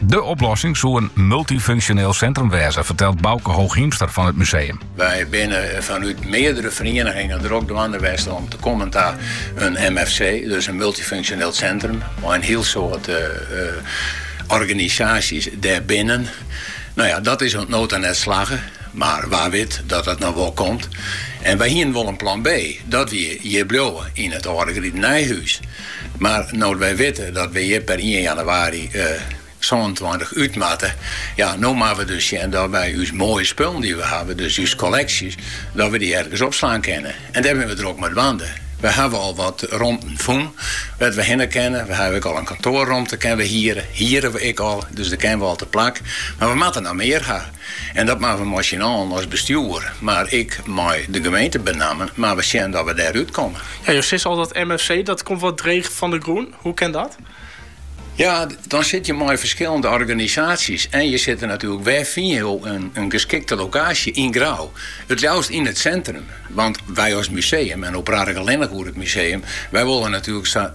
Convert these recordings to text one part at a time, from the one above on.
De oplossing soe in multyfunksjoneel sintrum wêze, fertelt Bauke Hooghiemster fan it museum. Wy binne fanút meardere ferienigingen drok dwaande west om te kommen ta in MFC, dus in multyfunksjoneel sintrum, mei in hiel soad organisaasjes dêrbinnen. No ja, dat is oant no ta net slagge, mar wa wit dat dat noch wol komt. En wy hienen wol in plan B, dat wie hjir bliuwe yn it âlde Gritenijhûs. Mar no't wy witte dat we hjir per ien jannewaarje sânentweintich út moatte, ja, no moatte we dus sjen dat wy ús moaie spullen dy't we hawwe, dus ús kolleksjes, dat we dy ergens opslaan kinne. En dêr binne we drok mei dwaande. We hawwe al wat romten fûn wêr't we hinne kinne. We hawwe ek al in kantoarromte kinne we hiere, hiere we ek al, dus der kinne we al teplak. Mar we moatte noch mear ha. En dat moatte we mei syn allen as bestjoer, mar ek mei de gemeente benammen, moatte we sjen dat we dêr út komme. Ja, jo sizze al dat MFC, dat komt wat dreech fan de grûn. Hoe kin dat? Ja, dan sitte je mei ferskillende organisaasjes en je sitte natuerlik, wêr fine je in geskikte lokaasje yn Grou? It ljouwst yn it centrum, want wy as museum, en no praat ik allinnich oer it museum, wy wolle natuerlik sa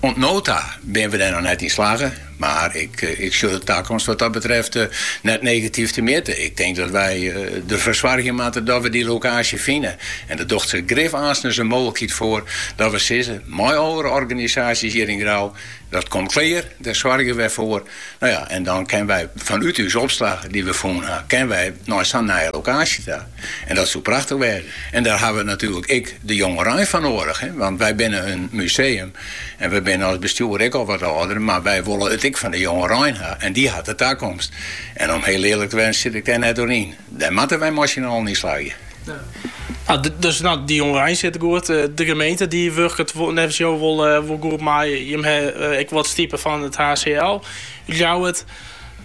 Oant no ta binne we dêr noch net yn slagge, mar ik sjoch de takomst wat dat betreft net negatyf temjitte. Ik tink dat wy derfoar soargje moatte dat we dy lokaasje fine en der docht sich grif aanstens in mooglikheid foar dat we sizze mei oare organisaasjes hjir yn Grou, dat komt klear, dêr soargje we foar. No ja, en dan kinne wy fanút ús opslach dy't we fûn ha, kinne wy nei sa'n nije lokaasje ta. En dat soe prachtich wêze. En dêr hawwe we natuerlik ek de jongerein foar noadich. Want wy binne in museum en we binne as bestjoer ek al wat âlder, mar wy wolle it ek fan de jongerein ha en dy hat de takomst. En om hiel earlik te wêzen sit ik dêr net oer yn. Dêr moatte wy mei syn allen yn slagje. Ja. Dus no, de jongerein sitte goed. Eh, de gemeente dy wurket neffens jou wol, eh, wol goed mei. Jim ha eh, ek wat stipe fan it HCL. Jo ha it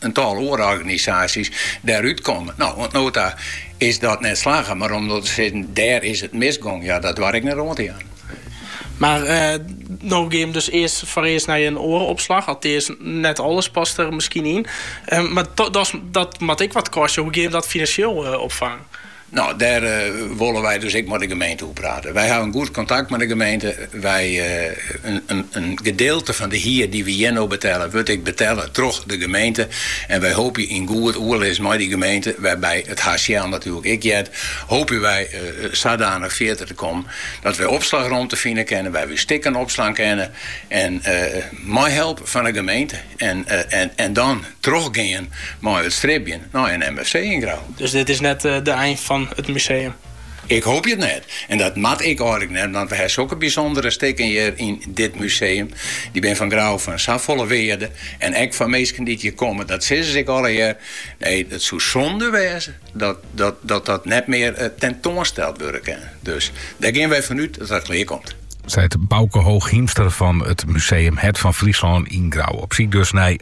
in tal oare organisaasjes dêrút kommen. No, oant no ta is dat net slagge, mar om no te sizzen dêr is it misgong, ja dat doar ik net oan te jaan. Mar eh, no gean we dus earst foarearst nei in oare opslach. Altears net alles past er miskien yn. Eh, mar dat, dat moat ek wat kostje. Hoe gean jim dat finansjeel eh, opfangen? No, dêr wolle wy dus ek mei de gemeente oer prate. Wy hawwe in goed kontakt mei de gemeente. Wy, in gedeelte fan de hier dy't we hjir no betelle, wurdt ek betelle troch de gemeente. En wy hoopje yn goed oerlis mei dy gemeente, wêrby't it HCL natuerlik ek heart, hoopje wy sadanich fierder te kommen dat wy opslachromte fine kinne wêr we ús stikken opslaan kinne en mei help fan de gemeente. En dan Trochgean mei it stribjen nei in MFC yn Grou. Dus dit is net de ein fan it museum? Ik hoopje it net. En dat moat ek eigenlik net, want we ha sokke bysûndere stikken hjir yn dit museum. Dy binne fan Grou fan safolle wearde en ek foar minsken dy't hjir komme. Dat sizze se ek allegear. Nee, it soe sûnde wêze dat dat net mear tentoansteld wurde kin. Dus dêr gean wy fan út dat dat klear komt. Seit Bauke Hooghiemster fan it museum Hert fan Fryslân yn Grou. Op syk dus nei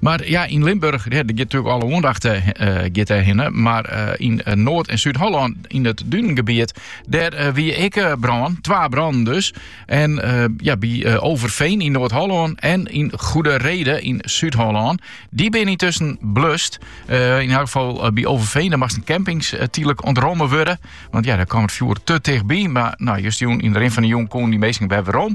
Mar ja, yn Limburch giet natuurlijk alle oandacht giet dêrhinne. Mar yn Noard en Súd-Hollân, yn it dunengebiet, dêr wie ek brân. Twa brannen dus. En ja, by Overveen yn Noard-Hollân en yn Goedereede yn Súd-Hollân. Dy binne yntusken blust. Yn elk geval by Overveen, dêr moasten campings tydlik ûntromme wurde. Want ja, dêr kaam it fjoer te tichtby. Mar no, justjûn yn de rin fan de jûn koenen dy minsken wer werom.